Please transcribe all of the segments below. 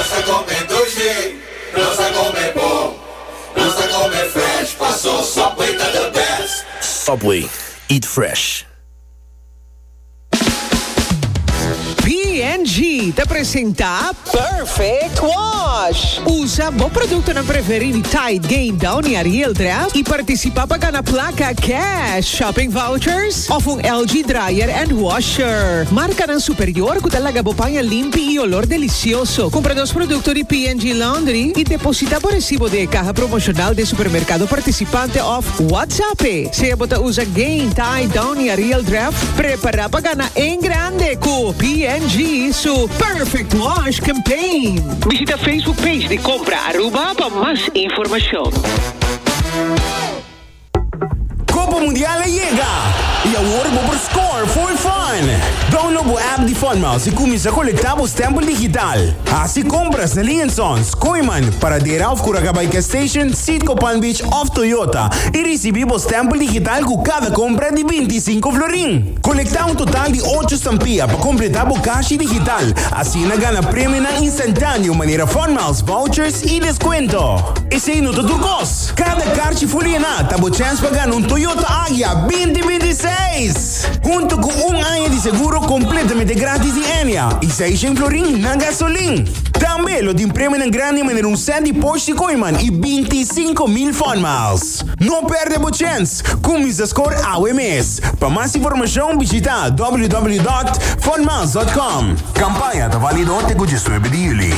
Nos ta come dulce, nos ta come bon, nos ta come fresh, paso Subway ta the best. Subway, eat fresh. P&G ta presenta Perfect Wash! Usa bo produktonan preferí di Tide, Gain, Downy, Ariel, Dreft i partisipá pa gana plaka, cash, shopping vouchers, Of un LG dryer and washer. Marcanan superior cu ta laga bo paña limpi y olor delicioso. Cumpra nos producto di P&G Laundry y deposita bo recibo den e caha promocional den supermercado participante of WhatsApp e. Sea bo ta uza Gain, Tide, Downy, Ariel, Dreft, prepara pa gana en grande cu P&G su Perfect Wash Campaign. Bishita Facebook page di Compra Aruba pa mas informacion. Copa Mundial a yega, y awor bo por score for fun! Download bo app di Funmouse y cuminsa colecta bo stempel digital. Haci compras na Link Sons, Kooiman, Paradera of Curaca by Gas Station, Citgo Palm Beach of Toyota y ricibi bo stempel digital cu cada compra di binticinco florin. Colecta un total di ocho stampilla pa completa bo cashi digital, asina gana premionan instantaneo manera Funmiles, vouchers y descuento. Esey no ta tur cos! Kada karchi fulina ta bo chèns pa gana un Toyota Agya binti binti i seis, huntu ku un aña di seguro kompletamente grátis di Enia i Seishen florin na gasolin. Tambe lo tin premionan grandi manera un sèt di Porsche Tikoiman i binti i sinku mil fònmals. No pèrdè bo chèns! Kuminsa skor awe mes! Pa mas informashon bishita www.fònmals.com. Kampaña ta válido te ku diesnuebe di juli.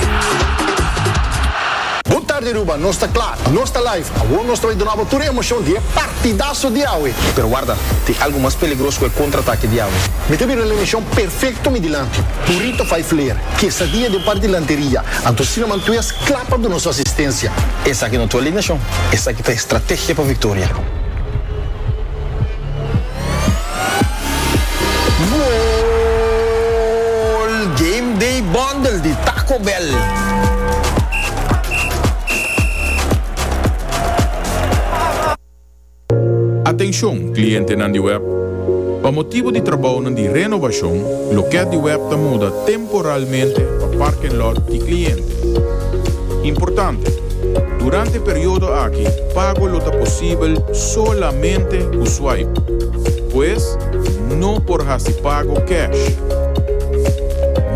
Bo tarde Aruba, nos ta kla! Nos ta live, awor nos ta bay dunabo tur e emocion di e partidaso di awe. Pero warda, tin algo mas peligros cu e contraatake di awe. Mi ta bira el emocion perfecto mi dilanti. Burrito fai flair, quesadilla den par dilanteria, anto Cinnamon Twist cla pa duna su asistencia. Esaki no ta alineacion, esaki ta estrategia pa victoria. Goal! Game Day Bundle di Taco Bell. Atencion, clientenan di web! Pa motibo di trabounan di renovacion, loket di web ta muda temporalmente pa parken lot di cliente. Importante, Durante periodo aki pago lo ta posibel solamente cu swipe. Pues, no por haci pago cash.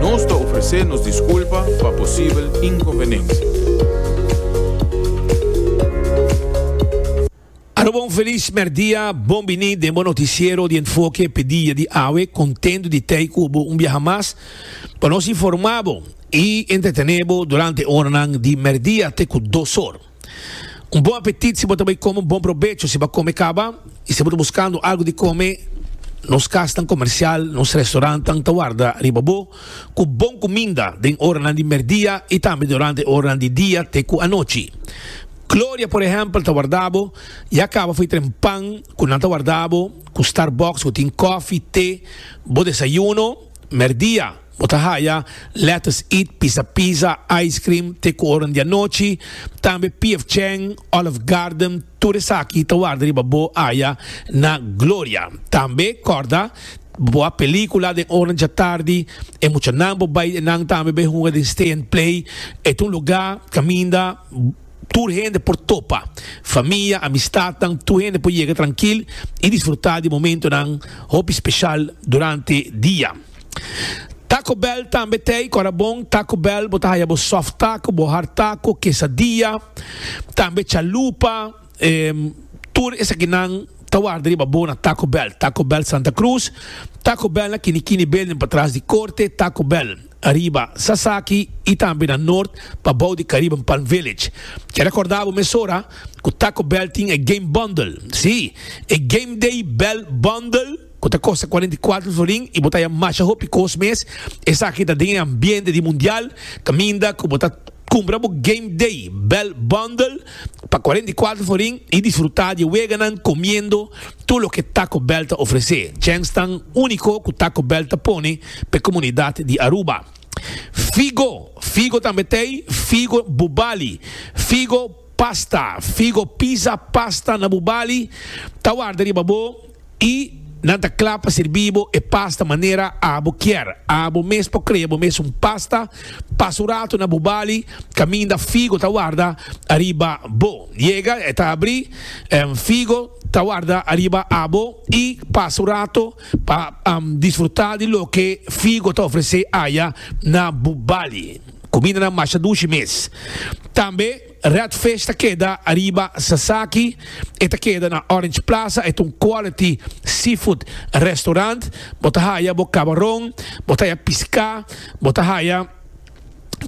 Nos ta ofrece nos disculpa pa posibel inconvenencia. Alo bon felis merdia, bon bini den bo noticiero di Enfoke pe dia di awe, contento di tey cu bo un biaha mas pa nos informa bo y entretene bo durante oranan di merdia te cu dos or. Un bon apetit si bo ta bay come un bon probecho si bo a come caba y si bo ta buscando algo di come nos casnan comercial, nos restaurantan ta warda riba bo cu bon cuminda den oranan di merdia y tambe durante oranan di dia te cu anochi. Gloria, por ehempel, ta warda bo y a caba fo'i tren pan cu nan ta warda bo cu Starbucks cu tin cofi, te, bo desayuno. Merdia, bo ta haya lettuce eat, pisa pizza, ice cream, te cu oro n'dianochi. Tambe PF Chang, Olive Garden, tur esaki ta warda riba bo aya na Gloria. Tambe, corda, bo a pelicula den ora n'djatardi, e muchanan bo bay enan tambe bay hunga den Stay and Play. E ta un lugar caminda. Tur hende por topa. Famia, amistadnan, tur hende por yega trankil i disfrutá di momentonan hopi speshal durante dia. Taco Bell tambe t'ei kòrda bon. Taco Bell bo ta haya bo soft taco, bo hard taco, quesadilla, tambe chalupa. Tur esakinan ta warda riba bo na Taco Bell. Taco Bell Santa Cruz, Taco Bell na Kinikini Building patras di korte. Taco Bell. Ariba, Sasaki y tambe na Noord pa bou di Caribbean Palm Village. Ke recorda bo mesora cu Taco Bell tin e game bundle. Sí, e Game Day Bell Bundle cu ta costa cuarenta y cuatro florin y bo ta haya masha hopi cos mes. Esaki ta den e ambiente di Mundial caminda cu bo ta cumpra bo Game Day Bell Bundle. pa cuarenta y cuatro forin y disfruta di e weganan comiendo tur loke Taco Bell ta ofrece, djens tan unico cu Taco Bell ta pone pa e comunidad di Aruba. Figo, figo tambe t'ey, figo bubali, figo pasta, figo pizza pasta na bubali ta warda riba bo. Y nan ta cla pa sirbi bo e pasta manera abo kier. Abo mes por crea bo mes un pasta. Pasa un rato na bo bali caminda figo ta warda ariba bo. Yega e ta abri, figo ta warda ariba abo y pasa un rato pa disfruta di loke figo ta ofrece aya na bo bali. Cumindanan masha dushi mes. Tambe. Redfish ta keda ariba Sasaki, e ta keda na Orange Plaza, e ta un quality seafood restaurant, bo ta haya bo cabaron, bo ta haya pisca, bo ta haya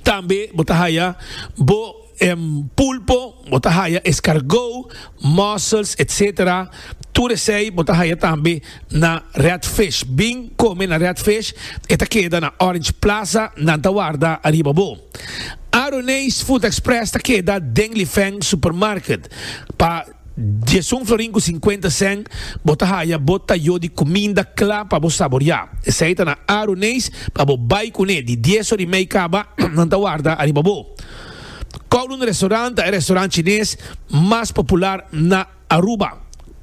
tambe bo ta haya bo pulpo, bo ta haya escargot, mussels etc. Tur esey bo ta haya tambe na Redfish. Bin come na Redfish, e ta keda na Orange Plaza, nan ta warda ariba bo. Aroneis Food Express ta keda den Lifeng Supermarket. Pa diesun florin ku sinkuenta sèn bo ta haya bo tayó di kuminda kla pa bo saboriá. Esei ta na Aroneis pa bo bai kuné. Di dies or i mei kaba, nan ta warda ariba bo. Kowloon Restaurant ta e restaurant chines mas popular na. Aruba,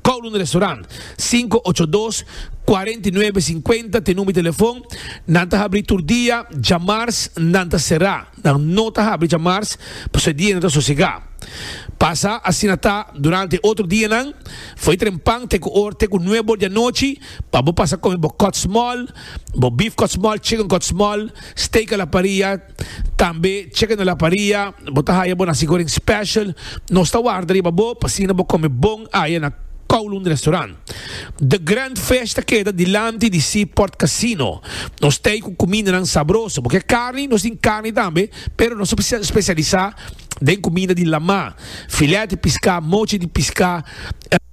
Kowloon Restaurant, sinku ocho dos, kuarenta i nuebe, sinkuenta t'e number di telefon, nan ta habri tur dia, djamars nan ta sera, nan no ta habri djamars pasobra e dia nan ta sosega. Pasa asina ta durante e otro dianan, fo'i trempan te ku or te ku nuebe or di anochi pa bo pasa kome bo kòtsmòl, bo beef kòtsmòl, chicken kòtsmòl, steak a la parrilla, Tambe cheque na la paria, bo ta haya bo naci goreng special, nos ta warda riba bo p'asina bo come bon aya na Kowloon Restaurant. The Grand Fish ta keda dilanti di Seaport Casino. Nos t'ey cu cumindanan sabroso. Bo ke carni, nos tin carni tambe, pero nos ta specialisa den cuminda di lama, filet di pisca, mochi di pisca.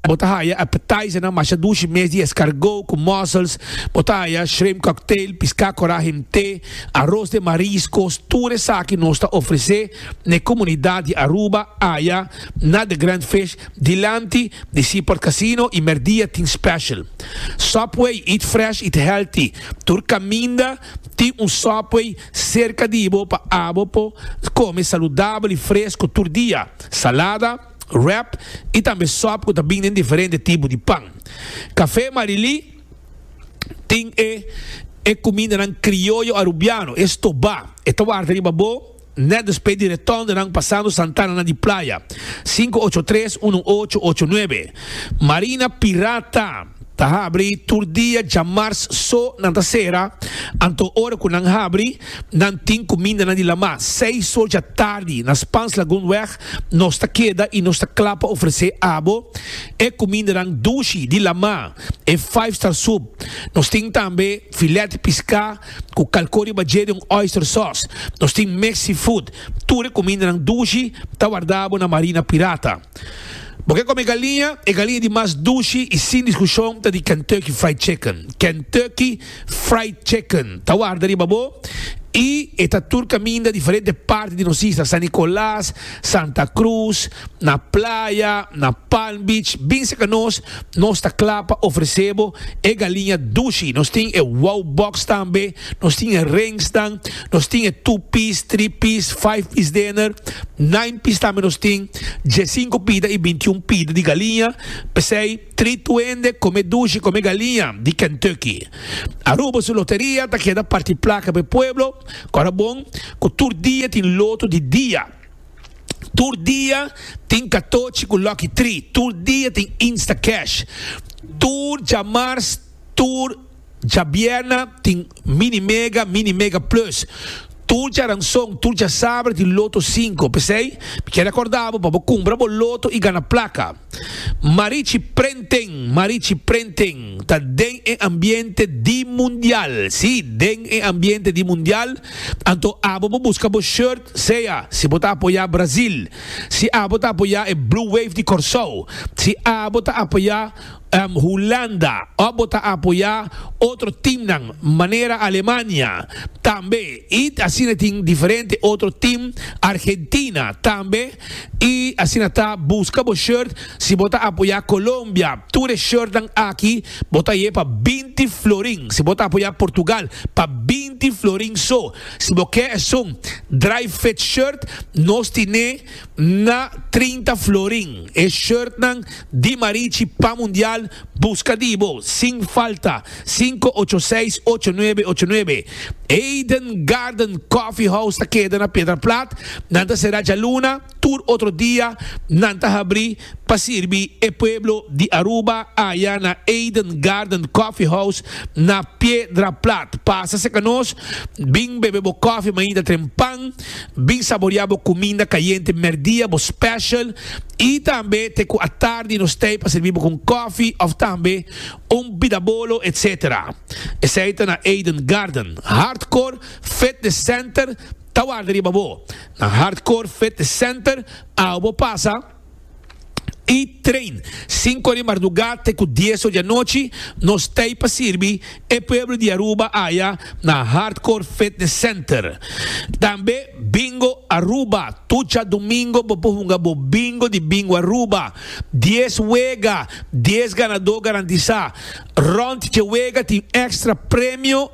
Bo ta haya appetizernan masha dushi mes di escargot cu mussels. Bo ta haya shrimp cocktail, pisca cora himte. Aros den mariskos tur esaki nos ta ofresé n'e komunidat di Aruba aya na The Grand Fish dilanti di Seaport Casino i mèrdia tin special Subway eat fresh eat healthy tur kaminda tin un Subway serka di bo pa abo por kome saludabel i fresku tur dia salada wrap i tambe sòp ku ta bin den diferente tipo di pan Café Marily. tin e e kumindanan krioyo arubiano, e stobá, e ta warda riba bo nèt despé di retòndenan pasando santananan di playa, sinku ocho tres unu ocho ocho nuebe. Marina Pirata ta habri tur dia djamars so nan ta sera, anto ora ku nan habri nan tin kumindanan di lamá seis sor dja tardi na Spaanslagoonweg nos ta keda i nos ta kla pa ofresé abo e kumindanan dushi di lamá e five star soup. Nos tin tambe filet piscá cu calcó riba dje di un oyster sauce. Nos tin mix seafood. Tur e cumindanan dushi ta wardabo na marina pirata. Bo ke come galiña? E galiña di mas dushi y sin discusion ta di Kentucky Fried Chicken. Kentucky. Fried Chicken ta warda riba bo y e ta tur caminda diferente parti di nos isla, San Nicolas, Santa Cruz, na playa, na Palm Beach, bin cerca nos, nos ta cla pa ofrece bo e galiña dushi, nos tin e Wow Box tambe, nos tin e Rings nan, nos tin e Two Piece, Three Piece, Five Piece Dinner, Nine Piece tambe nos tin, Djesinco pida y Bintiun pida di galiña, p'esey. Tri tuende come dushi come galiña di Kentucky. Aruba su loteria ta keda parti placa p'e pueblo, ora bon cu tur dia tin loto di dia. Tur dia tin katochi cu lucky tri, tur dia tin Instacash, tur djamars, tur. Djabièrna tin Mini Mega, Mini Mega Plus. Tur djaranson, tur djasabra di Loto Sinku. P'esei, mi ker rekorda bo pa bo kumpra bo loto i gana plaka. Marichi Prenting, Marichi Prenting ta den e ambiente di mundial, sí, den e ambiente di mundial. Anto abo bo buska bo shirt, sea si bo ta apoyá Brazil, si abo ta apoyá e Blue Wave di Kòrsou, si abo ta apoyá. Hulanda, òf bo ta apoyá otro timnan manera Alemania tambe i asina tin diferente otro tim, Argentina tambe i asina ta buska bo shirt si bo ta apoyá Colombia tur e shirtnan aki bo ta ye pa binti florin si bo ta apoyá Portugal pa binti florin so si bo ke esun dry fit shirt nos tin'é na trinta florin e shirtnan di Marichi pa Mundial buska di bo sin falta sinku ocho seis ocho nuebe ocho nuebe Eden Garden Coffee House ta keda na Piedra Plat nan ta sera djaluna tur otro dia nan ta habri pa sirbi e pueblo di Aruba aya na Eden Garden Coffee House na Piedra Plat pasa seka nos bin bebe bo coffee mainta trempan. Bin saborea bo cuminda cayente merdia, bo special, y tambe te cu atardi nos tey pa sirbi bo cu un cofi of tambe un bidabolo etc. Esey ta na Eden Garden. Hardcore Fitness Center ta warda riba bo. Na Hardcore Fitness Center awe bo pasa. i train sinku di mardugá te ku dieso di anochi nos tei pa sirbi e pueblo di Aruba aya na Hardcore Fitness Center. Tambe Bingo Aruba, tur dja domingo bo por hunga bo bingo di Bingo Aruba. Dies wega, dies ganadó garantisá. Rònt dje wega tin èkstra premio.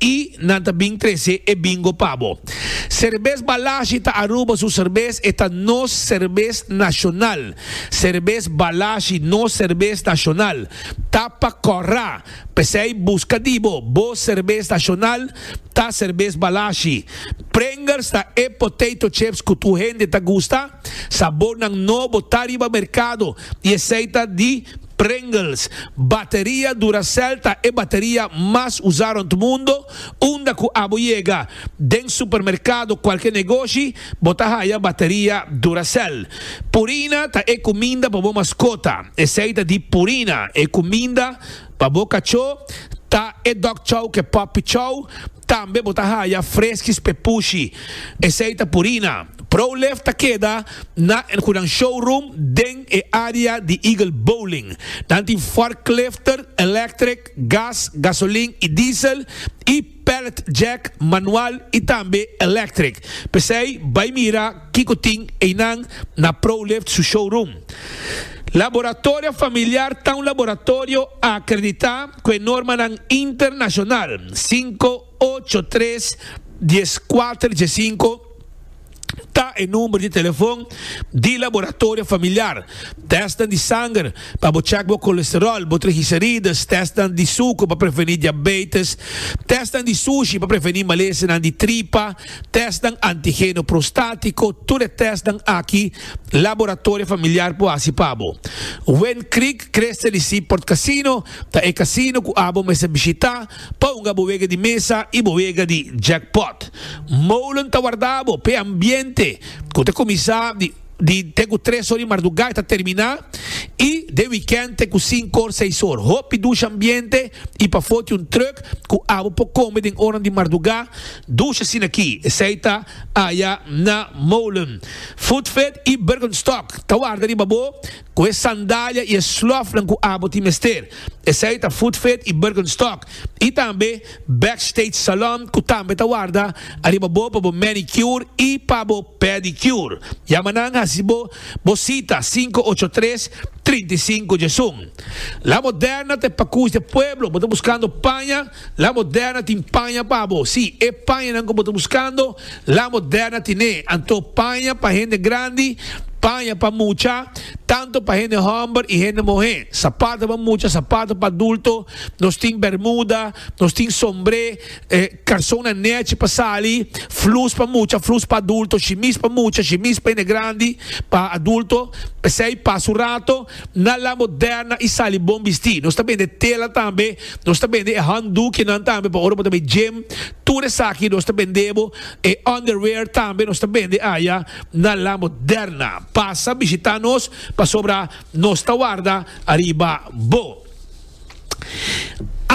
I nan ta bin trese e bingo pa bo. Serbes Balashi ta Aruba su serbes, e ta nos serbes nashonal. Serbes Balashi, nos serbes nashonal, ta pa kòrá. P'esei buska di bo, bo serbes nashonal ta serbes Balashi. Pringers ta e potato chips ku tur hende ta gusta. Sabornan nobo ta riba merkado i esei ta di. Pringles, Bateria Duracell ta e bateria mas usá rond mundo, unda ku abo yega den supermerkado kualke negoshi bo ta haya bateria Duracell. Purina ta e kuminda pa bo maskota, esei ta di Purina, e kuminda pa bo kachó ta e Dog Chow ke Puppy Chow, Tambe bo ta haya freskis p'e pushi. Esei ta Purina. ProLift ta keda na El Hunan Showroom den e área di Eagle Bowling. Nan tin forklifter, electric, gas, gasolin i diesel, i pallet jack, manual i tambe electric. P'esei bai mira kiko tin einan na ProLift su showroom. Laboratorio Familiar ta un laboratorio a akreditá Cu e normanan internacional cinco, ocho, tres, dies, cuater, dies cinco ta e number di telefon di laboratorio familiar. Testnan di sanger pa bo check bo colesterol, bo trigicerides, testnan di sucro pa preveni diabetes, testnan di sushi pa preveni malesenan di tripa, testnan antigeno prostatico, tur e testnan aki laboratorio familiar por haci pa bo. Wynn Creek Creste di Seaport Casino ta e casino cu abo mester bishita pa hunga bo wega di mesa y bo wega di jackpot. Molen ta warda bo p'e ambiente cu ta cuminsa di di te cu tres or di marduga y ta termina y den weekend te cu cinco or, seis or. Hopi dusha ambiente y pafo tin un truck cu abo por come den ornan di marduga dusha asina aki. Esey ta aya na Molen. Food Fit y Birkenstock ta warda riba bo. Cu e sandalia y e slofnan cu abo tin mester, esey ta Footfit y Birkenstock, y tambe Backstage Salon cu tambe ta warda ariba bo pa bo manicure y pa bo pedicure. Yama nan haci bo bo cita cinco ocho tres, trinta y cinco djesun. La Moderna ta e pacush de pueblo, bo ta buscando paña? La Moderna tin paña pa bo. Sí, e pañanan ku bo ta buskando, La Moderna tin'é. Anto paña pa hende grandi, paña pa mucha, tantu pa hende hòmber i hende muhé, sapato pa mucha, sapato pa adulto, nos tin bermuda, nos tin sombré, karsonnan nèchi pa sali, flus pa mucha, flus pa adulto, shimis pa mucha, shimis pa hende grandi, pa adulto. P'esei, pas un rato, na La Moderna i sali bon bistí. Nos ta bende tela tambe, Nos ta bende e handdoekjenan tambe pa ora bo ta bay gym, tur esaki nos ta bende bo, e underwear tambe nos ta bende aya na La Moderna. Pasa bishita nos pasobra nos ta warda ariba bo.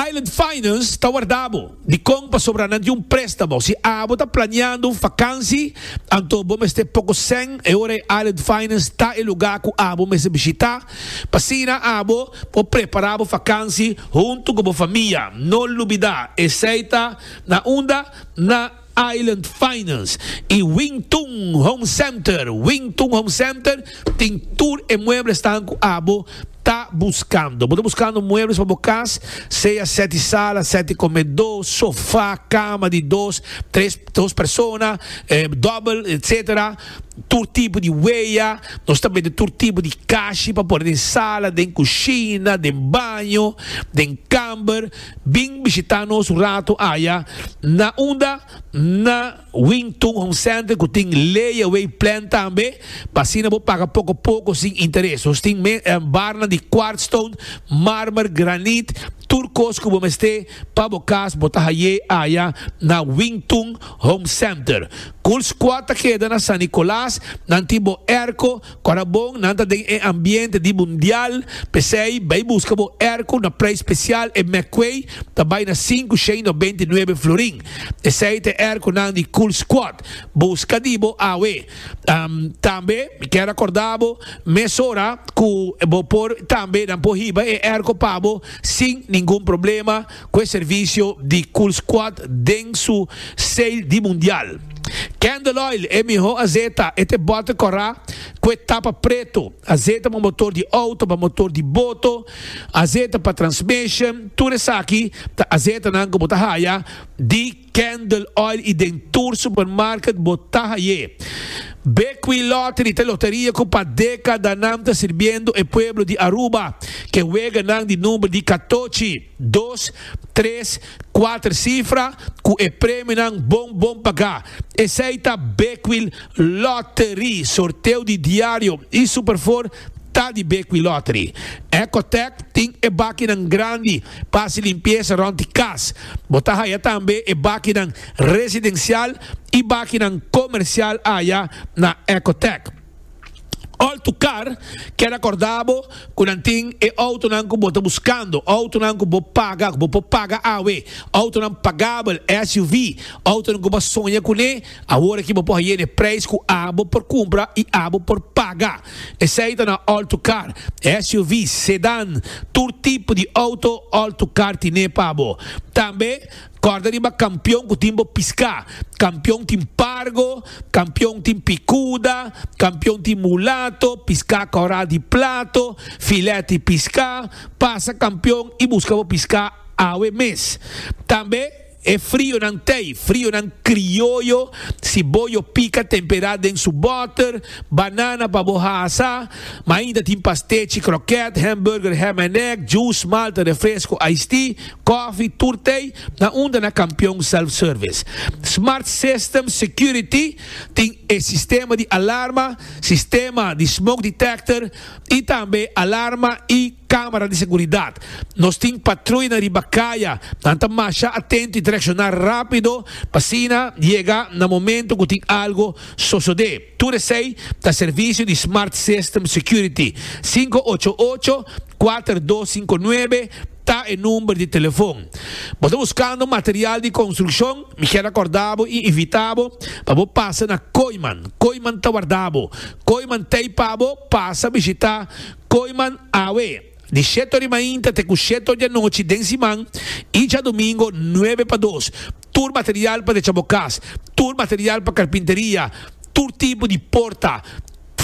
Island Finance ta warda bo. Dikon? Pasobra nan tin un prestamo. Si abo ta planeando un fakansi, anto bo mester poko sèn, e ora ei Island Finance ta e lugar ku abo mester bishita. Pasina abo por prepará bo fakansi huntu ku bo famia. No lubidá esei ta na unda? Na Island Finance i Wing Tun Home Center. Wing Tun Home Center tin tur e mueblesnan ku abo ta buskando. Bo ta buskando muebles pa bo kas, sea sèti sala, sèti komedó, sofá, kama di dos, tres, dos persona, dòbel, etsetera. tur tipo di wea, nos ta mete tur tipo di kashi pa pone den sala, den kushina, den baño, den kamber, bin bishita nos un rato aya na unda? na Wing Tun Home Center ku tin Lay Away Plan tambe, pa asina bo paga poko poko sin interes. Nos tin barnan di quartz stone, marmer, granit, tur kos ku bo mester pa bo kas bo ta hay'e aya na Wing Tun Home Center. Cool Squad ta keda na San Nicolas, nan tin bo airco, kora bon nan ta den e ambiente di mundial, p'esei bay busca bo airco na prijs special e McQuay ta bay na sinku shei no beinti nuebe florin. Esei ta e airco nan di Cool Squad. Busca di bo awe. Tambe mi kier a corda bo mesora cu bo por tambe nan por hiba e airco pa bo sin ningun problema. cu e servicio di Cool Squad den su sale di Mundial. Candle Oil e miho azeta, e ta e bote cora cu e tapa preto, azeta pa motor di auto, pa motor di boto, azeta pa transmission, tur esaki ta azetanan cu bo ta haya di Candle Oil y den tur supermarket bo ta haye. Bekwee Lottery ta loteria cu pa decadanan ta sirbiendo e pueblo di Aruba ke weganan di number di catochi, dos, tres, cuater cifra cu e premionan bon bon paga. Esey ta Bekwee Lottery. Sorteo di diario y Superfour ta di Bekwee Lottery. Ecotec tin e bakinan grandi Pa hasi limpiesa rond di kas. Bo ta haya tambe e bakinan residensial i bakinan komersial aya na Ecotec. All to car keda kordá bo ku nan tin e outonan ku bo ta buskando, outonan ku bo paga, ku bo por paga awe, outonan pagabel, SUV, outonan ku bo a soña kuné. Awor aki bo por haye n'e prijs cu abo por cumpra y abo por paga. Esey ta na all-to-car, SUV's, sedan, tur tipo di auto all-to-car tine pa bo. Tambe corda riba Campeon cu tin bo pisca. Campeon tin Pargo, Campeon tin Picuda, Campeon tin Mulato, pisca Corral di Plato, Filet y Pisca. Pasa Campeon y busca bo pisca awe mes. Tambe. E frionan tei, frionan krioyo, si bo yo pika tempera den su boter, banana pa bo hasa, ma ainda tin pastechi, kroket, hamburger, ham en egg, juice, malta, refresco, ice tea, kofi, tur tei, na unda na Kampion Self Service. Smart Systems Security tin e sistema di alarma, sistema di smoke detector y tambe alarma y. Camera di seguridad. Nos tin patruina riba caya. Nan ta masha atento y ta reacciona rapido pa asina yega na momento cu tin algo sosode. Tur esey ta servicio di Smart System Security. Sinku ocho ocho, kuater dos sinku nuebe ta e number di telefon. Bo ta buscando material di construccion? Mi kier acorda bo y invita bo pa bo pasa na Koiman. Koiman ta warda bo. Koiman ta ey pa bo pasa bishita. Koiman awe, di sheto di mainta te ku sheto di anochi den siman i djadumingu nuebe pa dos. Tur material pa decha bo kas, tur material pa karpinteria, tur tipo di porta,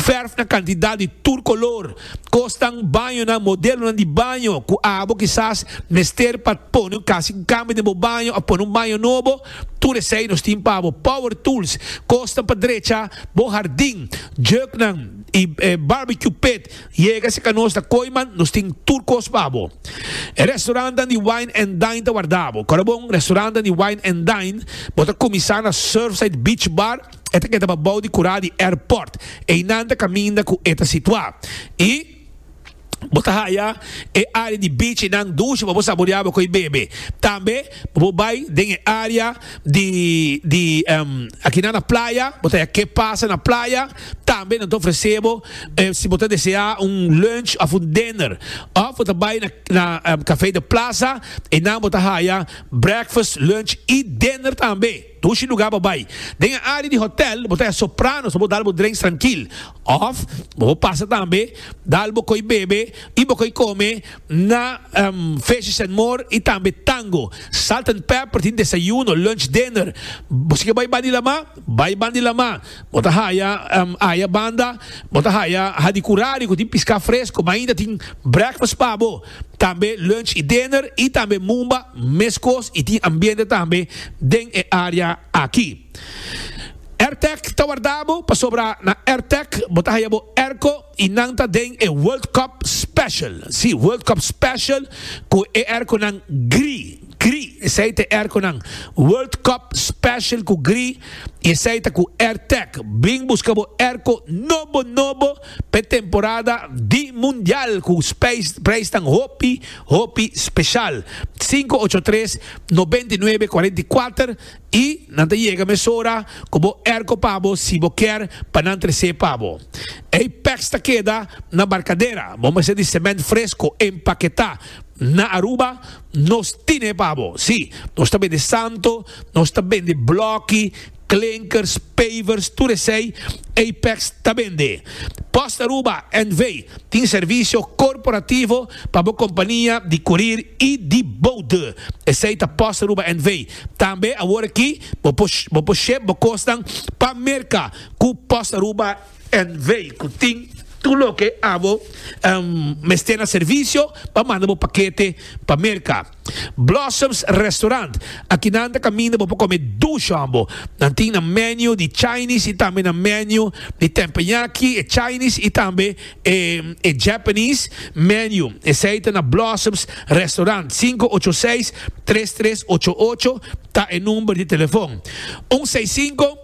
fèrf na kantidat di tur kolor, kosnan, bañonan, modelonan di baño ku abo kisas mester pa pone un kasi un kambio den bo baño òf pone un baño nobo, tur esei nos tin pa bo. Power tools, kosnan pa drecha bo hardin, jèuknan. y barbecue pit yega si ka nos ta koy man nos tin tur kos pa bo e restaurantan di wine and dine ta warda bo kora bon restaurantan di wine and dine bo ta kumisa na surfside beach bar e ta keda pa bou di kura di airport einan ta kaminda ku e ta situa y bo ta haya e área di bichinan dushi pa bo saboreá bo ku e bebe. Tambe pa bo bai den e área di di akinan na playa, bo ta haya ke pasa na playa. Tambe nan ta ofresé bo si bo ta deseá un lunch òf un dinner. Òf bo ta bai na na Café de Plaza, einan bo ta haya breakfast, lunch i dinner tambe. Dushi lugar bo bai. Den e área di hotèl bo ta hasi sopranos pa bo dal bo drenks trankil. Òf bo por pasa tambe dal bo koi bebe i bo koi kome na Fishes and More i tambe Tango. Salt and Pepper tin desayuno, lunch, dinner. Bo si ke bai bandi Lamá, bai bandi Lamá. Bo ta haya aya banda bo ta haya Hadi Curari ku tin piská fresko. Mainta tin breakfast pa bo. tambe lunch y dinner y tambe mumba mescos y tin ambiente tambe den e area aki. Airtec ta wardabo pasobra na Airtec bo ta haya bo airco y nan ta den e World Cup Special, si World Cup Special cu e airconan gri, gri esey ta e airconan World Cup Special cu gri y esey ta cu Airtec. Bring busca bo airco nobo nobo. P'e temporada di Mundial ku preisnan hopi hopi speshal. Sinku ocho tres nobenta i nuebe kuarenta i kuater i nan ta yega mesora ku bo erko pa bo si bo kier pa nan tres'é pa bo. Ei pèks ta keda na barkadera, bo mester di sement fresko empaketá. Na Aruba nos tin'é pa bo. Sí, nos ta bende santo, nos ta bende blòki. Klinkers, pavers, tur esei Apex ta bende. Post Aruba NV. tin servisio korporativo pa bo kompania di kurir i di boude. Esei ta Post Aruba NV. Tambe awor aki bo por shep bo kosnan pa Merka ku Post Aruba NV. Ku tin tur loke abo mester na servisio pa manda bo pakete pa Merka. Blossoms Restaurant, Aki nan ta kaminda bo pa kome dushon bo. Nan tin nan menu di Chinese y tambe nan menu di tempenyaki, e Chinese y tambe e e Japanese menu. Esey ta na Blossoms Restaurant. Sinku ocho seis tres tres ocho ocho ta e number di telefon. Un seis sinku.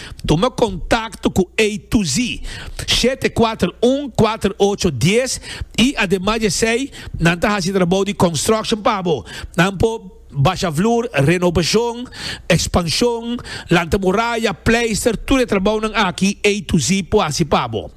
Tuma kontakto ku A to Z shete kuater un kuater ocho dies i ademas di esei nan ta hasi trabou di construction pa bo. Nan por basha vloer, renobashon, ekspanshon, lanta moraya, pleister, tur e trabounan aki A to Z por hasi pa bo.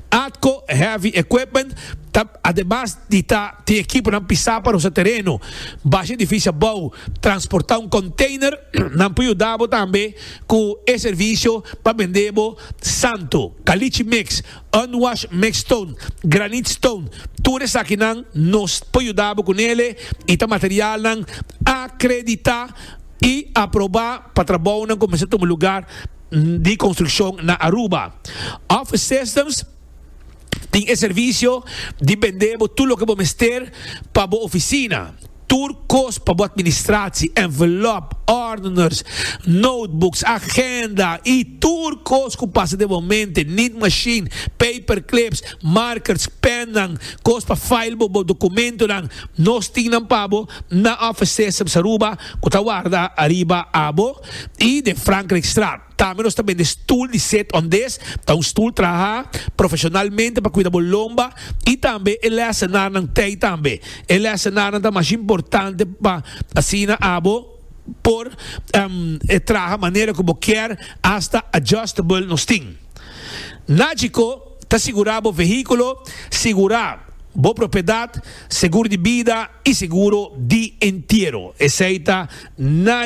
Atco Heavy Equipment ta ademas di ta tin ekiponan pisá pa rosa tereno, basha edifisio abou, transportá un konteiner, nan por yuda bo tambe. Cu e servicio pa bende bo santo, caliche mix, unwash mix stone, granite stone, tur esakinan nos por yuda bo cu nele y ta materialnan acredita y aproba pa trabounan cu mester tuma lugar di construccion na Aruba. Office Systems. Tin e servicio di bende bo tur loke bo mester pa bo oficina. Tur cos pa bo administratie, envelop, ordeners, notebooks, agenda y tur cos cu pasa den bo mente, need machine, paperclips, markers, pennan, cos pa file bo bo documentonan, nos tin nan pa bo na Office Systems Aruba cu ta warda ariba abo y den Frankrijkstraat. Tambe nos ta bende stul di sit on dis, ta un stul traha profesionalmente pa kuida bo lomba, i tambe e lèsenarnan tei tambe. E lèsenarnan ta mas importante pa asina abo por traha manera ku bo kier, asta adjustable nos tin. Nagico ta sigurá bo vehíkulo, sigurá bo propiedat, seguro di bida i seguro di entiero. Esei ta Nagico.